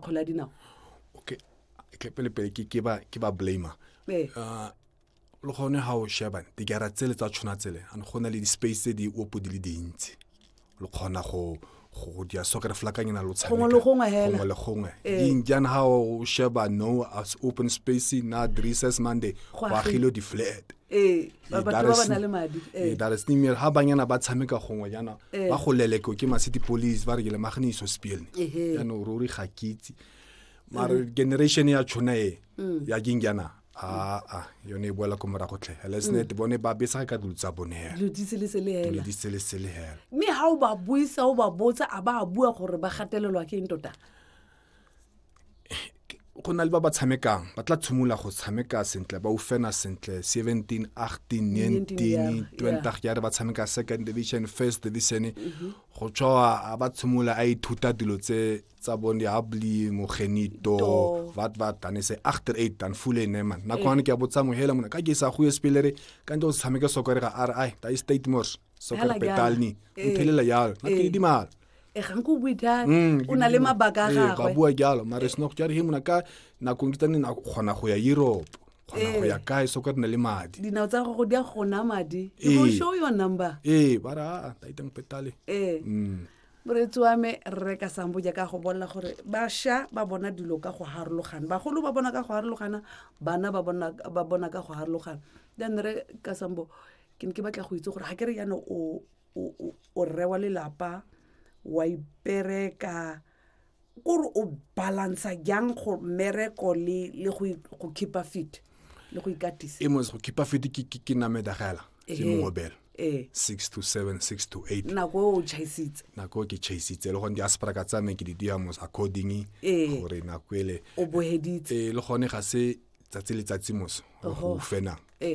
kgwele ya dinao okay ke pele pele ke ke ba ke ba blamer eh uh, le gone ga o sheba digara tsele tsa tshwana tsele and go na le di-space tse di opo di le dintsi lo kgona go go dia soccer flakanyana lo tshameka gongwe le gongwe hela gongwe le gongwe eh. injan ha o sheba no as open space na dresses monday go agilo di flat ee, ee. daresnimel ga banyana ba tshameka gongwe jaana ee. ba go leleko ke masity police ba re ke lemagane iso spielne jaanong ruri ga kitse mare generation ya tshona e mm. ya keng jaana aa ah, ah, yone e boela ko morago tlhe lesnet mm. bone ba besa ka dilo tsa bone mme ga o ba buisa o ba botsa a ba bua gore ba gatelelwa ke eng tota go na le ba ba tshamekang ba tla tshimolola go tshameka sentle ba ufena sentle 17 18 19 20 ya re ba tshameka second division first division mhm. go tswa ba tshimolola a ithuta dilo tse tsa bone ya bli mogenito vat vat dan se agter eight dan fule ne man na kwane ke a botsa mohela mona ka ke sa go espelere ka ntse o tshameke sokore ga ri ai da state mors soccer Fela petal jalo. ni Ee. mphelela yalo na Ee. di mala e gang ko bue jalo Mm, o na le mabaka a Ee, ba gagwe bua jalo mare sena go jare he mona ka nakong ke tsane na kgona go ya europe kgona go Ee. ya kae soccer di na le madi dinao tsa gago di a gona madi Ee. you go show your number ee ba re a taitang petale ee Mm. moreetsi wa me rre ka sambo jaaka go bolela gore basha ba bona dilo ka go harologana bagolo ba bona ka go harologana bana ba bona ba bona ka go harologana then re ka sambo ke ne ke batla go itse gore ga ke re yana o o rre wa lelapa wa ipereka kore o balansa jang go mereko le le go go keepa fit le go ikatisa e mos go keepa fit ke ke ke name dagela ke eh, mo bel eh 6 to 7 6 to 8 na go o chaisitse na go ke chaisitse le go ndi aspara ka tsame ke di dia mos according eh. gore na kwele o boheditse eh le gone ga se tsatsi letsatsi moso go fenang ee,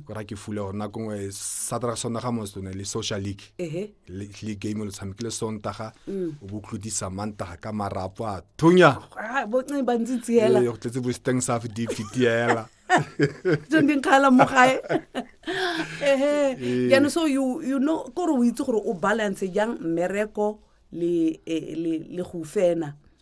gora ke fule gore nako ngwe satraga sondaga moso ne le social league le game lo tshamekile sontaga mm. o bo tlodisa mantaga ka marapo a thunya ah, go tletse bosteng sa fdp tiela jang di nkgala mo gae ehe jaanong so you you know kore o itse gore o balance jang mmereko le eh, le le go fena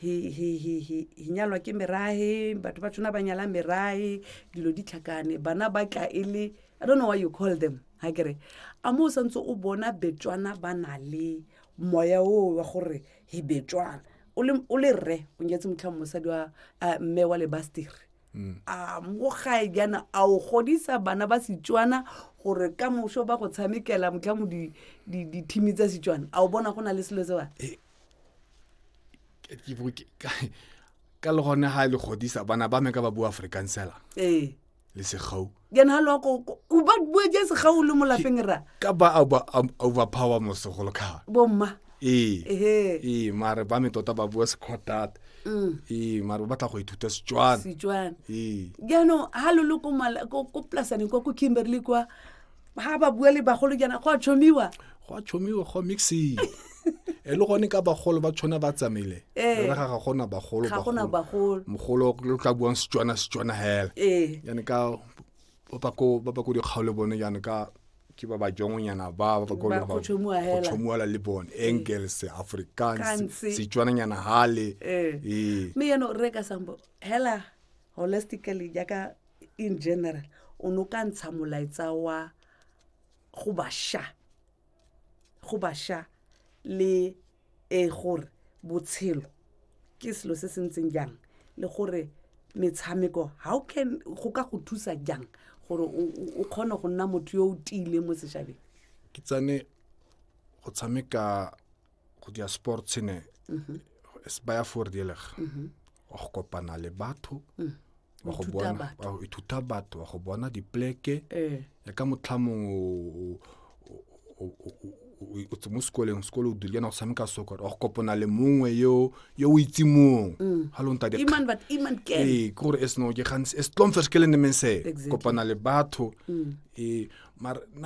hi hi hi hi hi nyalwa ke merahe batho ba tshwana ba nyala merahe dilo di tlhakane bana ba tla e le i don't know why you call them ha kere a mo o santse o bona betswana ba na le moya oo wa gore hi betswana o le- o le rre o nyetse motlhang mosadi wa ah, mme wa lebasteri a mo gae jaana a o godisa bana ba setswana gore ka moso ba go tshamekela motlhang di- di- dithimi tsa setswana a o bona go na le selo sewa ka le gone ga e le godisa bana ba me ka ba bua afrikaans fela ee. le segau jana ga lokoko o ba bua jang segau le mo lapeng ra ka ba overpower mosegolo kga bomma ee ee mare ba me tota ba bua sekgotata mm. ee mare ba batla go ithuta setswana setswana ee jaanong ga lo le ko plasaneng kwa ko kimberley kwa ga ba bua le bagolo jaana go a tshomiwa go a tshomiwa go mixing e le gone ka bagolo ba tshwana ba tsamaile eh. re ga ga gona bagolo ga gona bagolo mogolo lo tla buang setswana setswana hela eh. yana ka ba ba ko ba ba ko dikgaole bone yana ka ke ba ba jongonyana ba ba ko ba go tshomuela le bone eh. engels afrikaans setswana nyana hale eh me yano re ka sambo hela holistically jaaka in general o ne o ka ntsha molaetsa wa go basha go basha le e gore botshelo ke selo se se ntseng jang le gore metshameko how can go ka go thusa jang gore o kgone go nna motho yo o tiileng mo setšhabeng ke tsane go tshameka go dira sport se ne mhm. se baya fordelega mhm. wa go kopana le batho mm. wa go bona wa ithuta batho wa go bona dipleke eh. ya ka motlha mongwe o tse mo sekoleng sekolo o dule na go tshameka soccer wa go kopana le mongwe yo yo o itse mong mm. ga lo nta ee ke gore e seno ke gantsi e setlong fes ke le nemeng se kopana le batho mm. ee mara